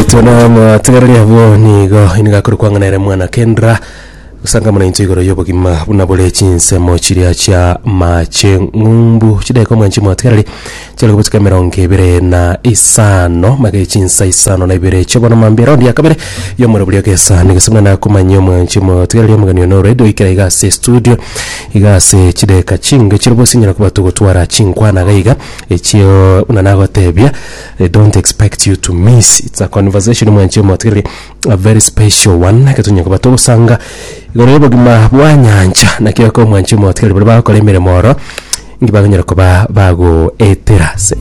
Naitwe na amatigareri abwo nigo nigo akore kwang'ana ere mwana kendra gusanga muna inche igoro y'obogima buna bore chinsemo chiria chia mache ng'umbu chidaeka omwanche mwatigareri chiare kobuchika emerongo ebere na isano mage chinsa isano na ibere chia bono mambia eraundi ya kabere y'omoro boria gesa negesa muna nakomanyia omwanche mwatigareri omogeni one already oikera iga ase estudio iga ase chidaeka chinke chirobo sinyara koba togotwara chinkwana iga iga echio buna nagotebia They don't expect you to miss. It's a conversation mwanche motigereri a very special one getunya koba togosanga igoro y'obogima bwa nyancha nakio ko mwanche motigereri bari bagokora emeremo oro ingi bakonyara koba bagoetera ase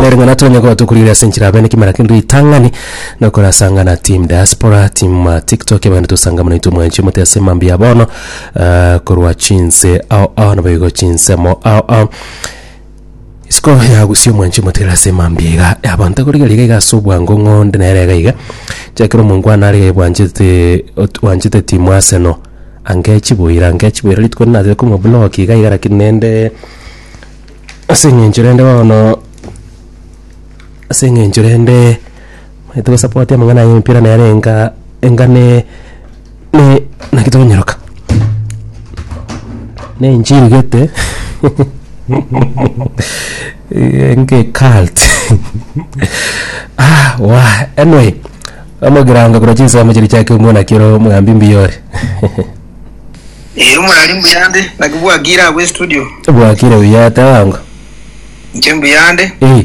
nere ng'ana tonya koba tokurire ase enchera abene kimera kende ritang'ani nokorasangana team diaspora team uh, tiktok abagende tosanga mono itwe mwanche mote ase mambi ya bono uh, korwa chinse ao ao nabo igo chinsemo ao ao Isiko yagusia omwanchi omotigare ase mambia iga y'abanto ekorigia riga iga ase obwango ng'a onde nere iga iga. Chiakera omongwana are iga bwanchete ot- bwanchete timu Arsenal. Ange chiboira ange chiboira rituko rinde natete komoblock iga iga lakini nende ase eng'encho rende bono ase eng'encho rende Onye togosapotia amang'ana aya y'emepira nere enga enga ne ne naki tokonyeroka? Na enchiri gete enga ecult ah wah anyway omogirango korwa chinsemo chiria chiake omwana kero omogambi mbuya ore Ee omorari mbuyande naki bwakire agwo estudio bwakire buya teba ongo inche mbuyande eh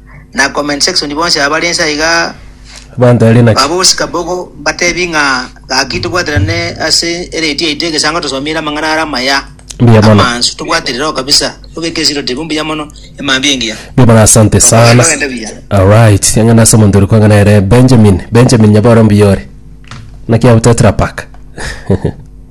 na comment section bonsi abare ense aiga Abanto are naki? babosi kabogo mbatebi ng'a gaki tobwaterane ase eredio yaito egesango tosomire amang'ana are amaya Mbuya mono. amansu tobwatire roho kabisa tobeke esiro tibu mbuya mono emambia engiya Mbuya mono asante sana. Bagende buya. Alright, eng'ana ase omonto ore kwang'ana ere Benjamin. Benjamin nyaboro mbuya ore. Naki abutetera paka.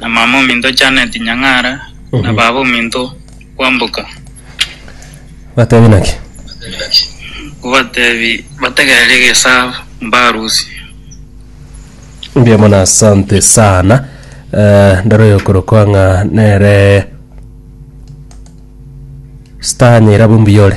na mama ominto Janet Nyang'ara, na baba ominto Kwamboka. Batebie naki? Ngobatebi bategereri egesabo mbarusi. Mbuya mono asante sana Eh, ndaro yokorokwa ng'a nere star nyairabo mbuyore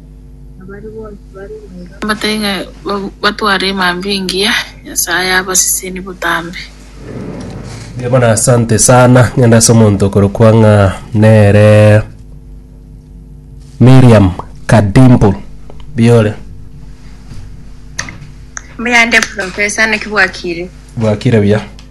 Mbatebi ng'a batware emambia engiya, Nyasaye abaseseni botambe. Mbuya mono asante sana ngende ase omonto okorokwa ng'a nere Miriam Kadimbu mbuya ore Mbuya ande professor, naki bwakire? bwakire buya.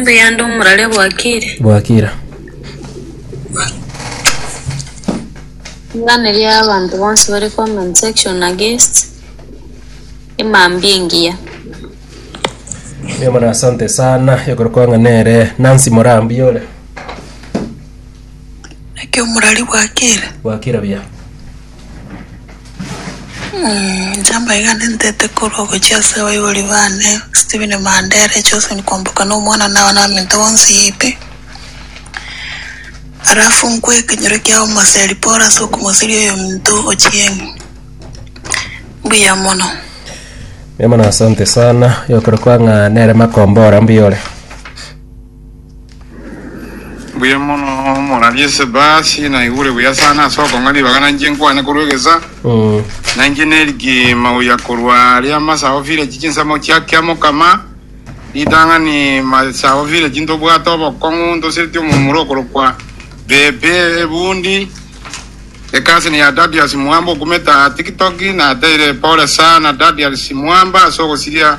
Mbe yande omorare bwakire. bwakira. Ring'ana ria abanto bonsi bare comment section against emambia engiya. Emana asante sana ekorokwa ng'a nere Nancy Morambi ore Naki omorari bwakire. bwakira buya. Inche mbaiga nintete korwa ogochia ase abaibori bane, Stephen Mandere, Josephine Kwamboka na omwana na abanyaminto bonsi pi. Alafu nkwe ekenyoro kia omoseri Paul ase okomoseria oyominto Ochieng. Mbuya mono. Mbuya mono asante sana, yokora kwa ng'a nere makombora mbuyore. Mbuya mono morarie ase ebasi, naigure buya sana ase okong'a ribaga na inche nkwane korwa egesa, na inche nerigima goyia korwa aria amasago village chinsemo chia kia mokama, ritang'ani masago village ntobwate obokong'u ntosereti omomura okorokwa Bebe Ebundi, ecousin ya Dadius Mwamba okumeta tiktok, nateire pole sana Dadius Mwamba ase ogosiria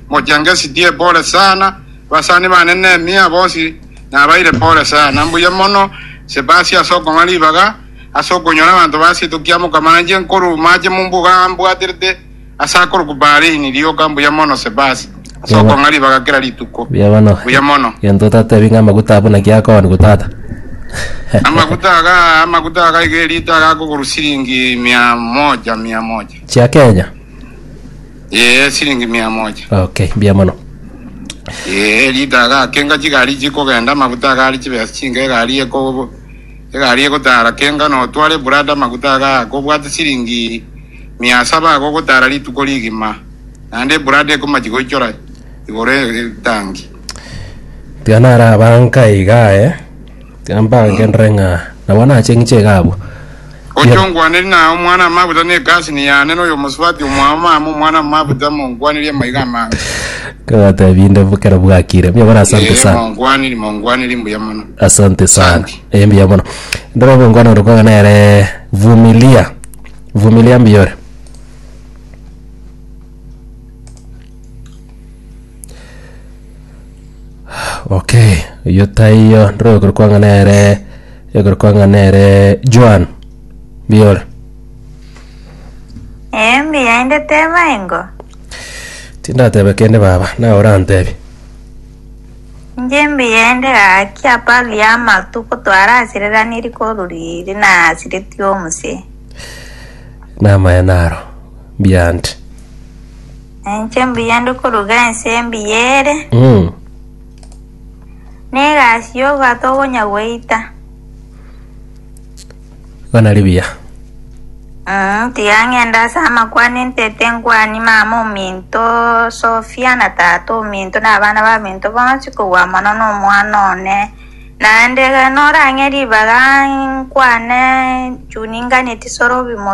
Mochengesidie pore sana. Abasani bane Nehemia bonsi nabaire pore sana. Mbuya mono Sebasi ase okong'a ribaga, ase okonyora abanto ba seito kia mokama nainche nkorwa amache mumbuga ambwaterete ase akorokwa baharini rioka. Mbuya mono Sebasi ase Yaba. okong'a ribaga kera rituko. Mbuya bono. Mbuya mono. Gento otatebi ng'a amaguta abwo naki akooniwa tata. Amaguta aga, amaguta aga iga erita aga akogorwa siringi mia moja, mia moja. Chia Kenya. Ee, siringi mia moja. Okay, mbuya mono. Ee, rita agakenga chigari chikogenda, amaguta agare chibesa chinga egari eko egari egotara, kenga na otware eburada amaguta agaa, kobwate siringi mia saba agogotara rituko rigima, naende eburada ekomachia goichora igoro e- etangi. Mbuya narabanka iga aye. Mbagenderere ng'a nabo nache ng'iche iga abwo. Gochia ongwaneri naye omwana amabuta ne egasini yane, na oyomosubati omwao mama omwana amabuta, mongwanirie amaiga amange. Nkabatebia inde bokera bwakire. Mbuya mono asante Ee, sana. mongwaniri, mongwaniri, mbuya mono. Asante sana. Asante. Eh, mbuya mono. Ndora obongwana ore kwang'a nere Vumilia. Vumilia mbuya ore. Okay, oyio taiyo ndiro ekero kwanga nere ekero kwanga nere Joan biyore Eh, mbuya inde teba engo. tindatebe kende baba naye orantebi Nje mbuya inde gaki aparo ya amatuko twarasiriraniri koruriri na asiriti omuse. namaye naro mbiante Ninche mbuya ndi koruga ense embuya ere, Mm. na egasi y'obwato obonya gweita. Igo nari buya. Mm, tiga ng'ende ase amakwane ntete nkwanie mama ominto Sofia na tata ominto na abana baminto bonsi kobua mono na omwana one. Naende ekero norang'e ribaga nkwane chuni ngane tisorobi mo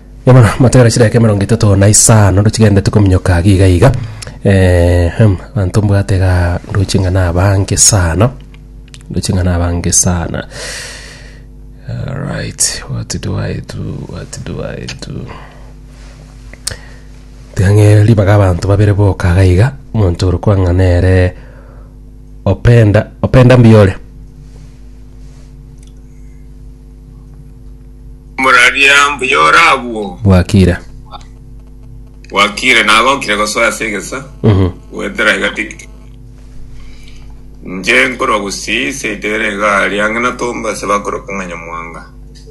Igo bono motegere chidaeka emerongo etato na isano ndochigenderete kominyoka iga iga iga eh, hem, abanto mbwate igaa ndoche ng'a nabange sana, ndoche ng'a nabange sana. Alright, what do I do, what do I do? Tiga ng'e ribaga abanto babere boka iga iga, omonto ore okwa ng'a nere Openda, Openda mbuya ore. Moraria mbuya ore agwo. Bwakire. Bwakire nagokire gosoa ase egesa. Mhm. Goetera iga tiktok. Nche nkorwa Gusii seito ere iga aria ang'e na Tombo ase bakoroka ng'a Nyamwanga.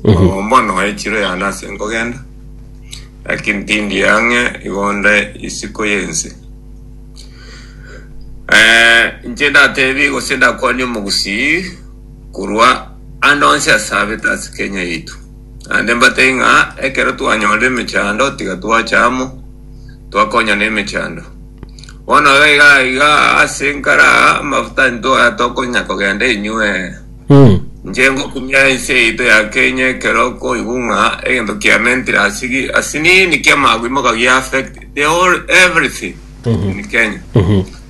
Mhm. Obo mbono aye chiro yane ase nkogenda. Lakini tindi ang'e igo nde isiko y'ense. Eh, nche ndatebie gose ndakwanie Omogusii korwa. Naende onsi asabete ase Kenya yaito. Naende mbatebie ng'a ekero twanyora emechando tiga twacha amo twakonyana emechando. Bono iga iga iga ase nkare aa amafuta intwaya tokonya kogenda enywe. Inche ngokumia ense yaito ya Kenya ekero okoigwa ng'a egento kiamentire asigi asinini kiamagwe moga gia affect the whole everything. in Kenya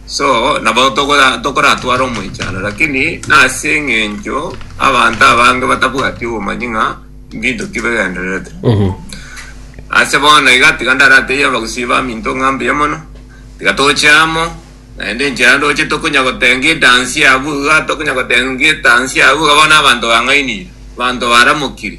so nabo tokora tokoratware omoichano lakini nase eng'encho abanto abange batabwati obomanyi ng'a mbinto ki begendererete ase bono iga tiga ndaratebia abagusii baminto ng'a mbuya mono tiga toche amo naende enchera ndoche tokonya gotenga edansi abwo iga tokonya gotenga edansi abwo iga bono abanto bang'ainire abanto baramokiri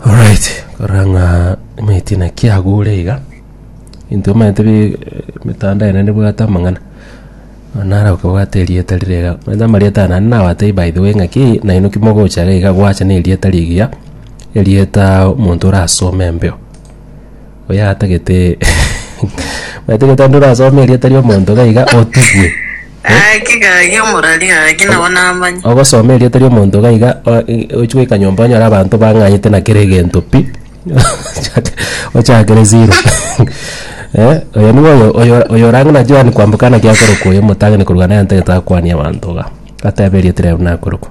Alright, korora ng'a emeti naki yagure iga, intwe omanyete bi emetandao ene nebwate amang'ana, nonya nare okobwate erieta rire iga, omanyete amarieta aya naende nabatebi by the way ng'a ki nainwe ki mogocha iga gwacha na erieta rigiya, erieta omonto orasome embeo. Oyatagete oyatagete onde orasome erieta ria omonto iga iga otubwe. Aye kigagi omorari gaki nabo namanye. Ogosoma erieta ria omonto iga iga o- i- ochi goika nyomba onyore abanto bang'anyete na kera egento pi ochake ochakere zero eh oyo nigo oyo oyo oyo orang'e na Joan kwamboka naki akorokwa oyo omotang'ani korwa naye antagete akwanie abanto iga, atebe erieta ria buna akorokwa.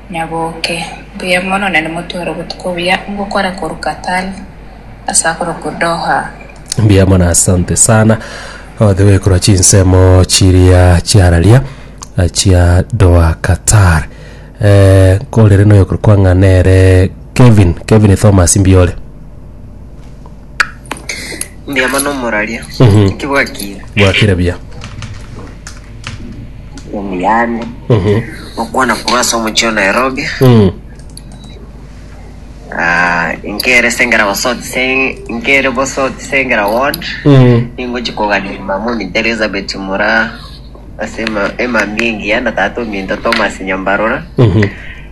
Nyaboke. Mbuya mono na nimotware obotuko buya ngokora korwa Qatar ase akorokwa Doha. Mbuya mono asante sana othi goikorwa chinsemo chiria chiararia eh, chia Doha Qatar eh, nkorere noyokorwa kwang'a nere Kevin Kevin Thomas mbiore Mbuya mono omoraria. Mhm. Inki bwakire? bwakire buya Omuyani. Mhm. Okwana korwa ase omochie wa Nairobi. Mm. Ah, inkere sengera bosoti se inkere bosoti sengera ward. Mm. Ningochi koganira mama ominto Elizabeth Mura ase ema emambia engiya na tata ominto Thomas Nyambarora. Mhm.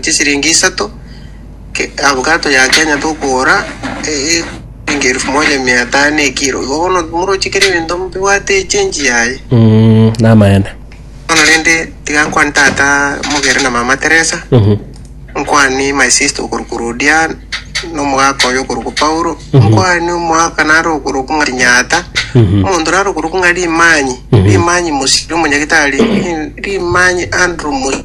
chisiringi isato ke avocado ya Kenya tokogora eye shilingi elfu moja mia tano ekiro igo bono morochi kera ebinto mbibwate echenji yaye Mm, namaene bono rende tiga nkwane tata mogere na mama Teresa Mhm. nkwani my sister okoruka rodia nomogaka oyo okoruka paulo nkwani omogaka nare okoruka ng'a rinyata Mhm. omonto nare okoruka ng'a rimanyi Mhm. rimanyi mosiri omonyagitari ri- rimanyi andrew Mo-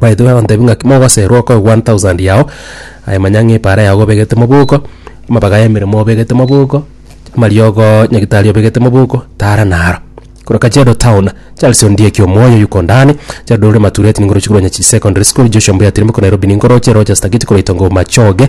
Baeto bagontebia ng'aki mogoserwa okoe one thousand yao, aye manya ng'a epaara yago obegete moboko, amabaga y'emeremo obegete moboko, amariogo nyagitari obegete moboko, tara naro. Korwa Kajiado Town, Charles Ondieki omoyo yuko ndani, Gerald Ore Matureti nigo oroche korwa Nyachichi Secondary School, Joshua Mbuya Tirimboka Nairobi nigo oroche, Rogers Tagiti korwa Itongo Machoge.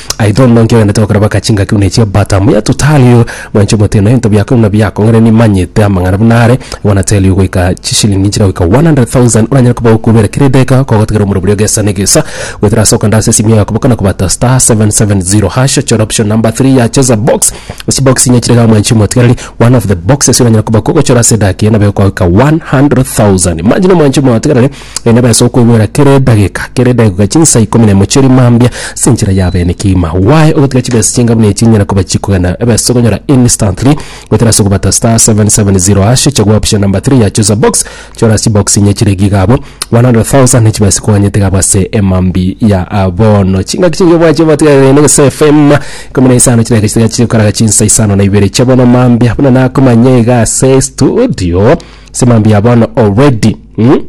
Aye tono nonki ogende tokoraba ka chingaki buna echia bata muya totalio mwanche omoteno ebinto biakoe buna biakong'ore nimanyete amang'ana buna are igo natelio goika chishilingi nchire goika 100,000 oranyare koba okobera kera edageka kogotigera omoro boria gesa negesa goetera ase okanda ase esimio yako bokana kobata star 770 hash ochore option number 3 ya cheza box chibox inye chire iga mwanchi omotigereri one of the boxes oranyare koba kogochora ase edageka eye nabo egokoa goika 100,000 imagine mwanchi omotigereri. Naende baise okoigwera kera edageka, kera edageka chinsa ikomi na emo chi'erimo mambia ase enchera ya bene kegima. Why ogotiga chibesa chinga buna echi enyare koba chikogenda ebese okonyora instantly goetera ase okobata star seven seven zero hash chagua option number three ya choose a box chora ase chibox enye chire iga iga one hundred thousand ne chibesa chikoganyete iga abwo ase emambia ya ah, bono. Chingaki chinge bwache botigarire ne gese FM ikomi na isano chidageka chitiga chikaraga chinsa isano na ibere chia bono mambia buna nakomanya iga ase estudio ase mambia ya bono already. Mm.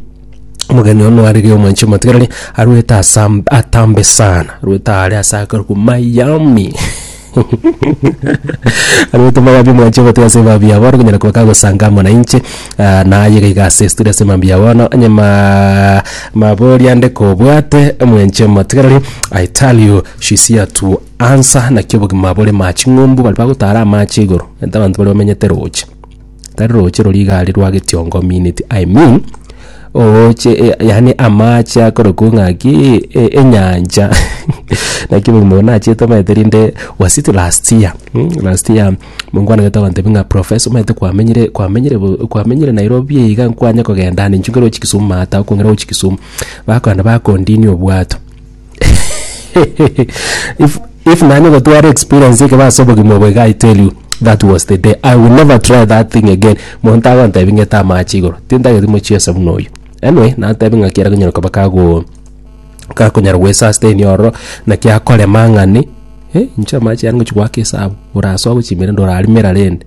Omogeni ono are ria omwanchi omotigareri arwete asam- atambe sana arwete aare ase akare kwa miami arwete miami omwanchi omotiga ase mambia bono konyara koba kagosanga amo nainche ah, naye iga iga ase studio ase mambia bono onye ma mabori ande kobwate omwanchi omotigareri i tell you she's here to answer naki obogima bore ma ching'umbu bari bagotara amache igoro egento abanto bare bamenyete roche tari roche roria igare rwa getiongo minute I mean ogoche eh, yani amache akorokwa ng'aki eh, eh, enyancha naki omonto nachete omanyete rinde was it last year mm, last year mongwana gete agantebi ng'a professor omanyete kwamenyire kwamenyire bo- kwamenyire nairobi eiga nkwanye kogenda ande inche nkarochi kisumu mata okongera gochi kisumu bakogenda bakondinia obwato if if nani gotwara experience eke base obogima obo iga i tell you that was the day i will never try that thing again monto agontebi ng'ete amache igoro tintageti mochiesa buna oyo anyway natebi ng'a kiara konyara koba kago gakonyara gwe sustain ororo naki akorema ng'ani eh inche amache aya ngochi goaka esabu orasoe gochia emerende orarimera rende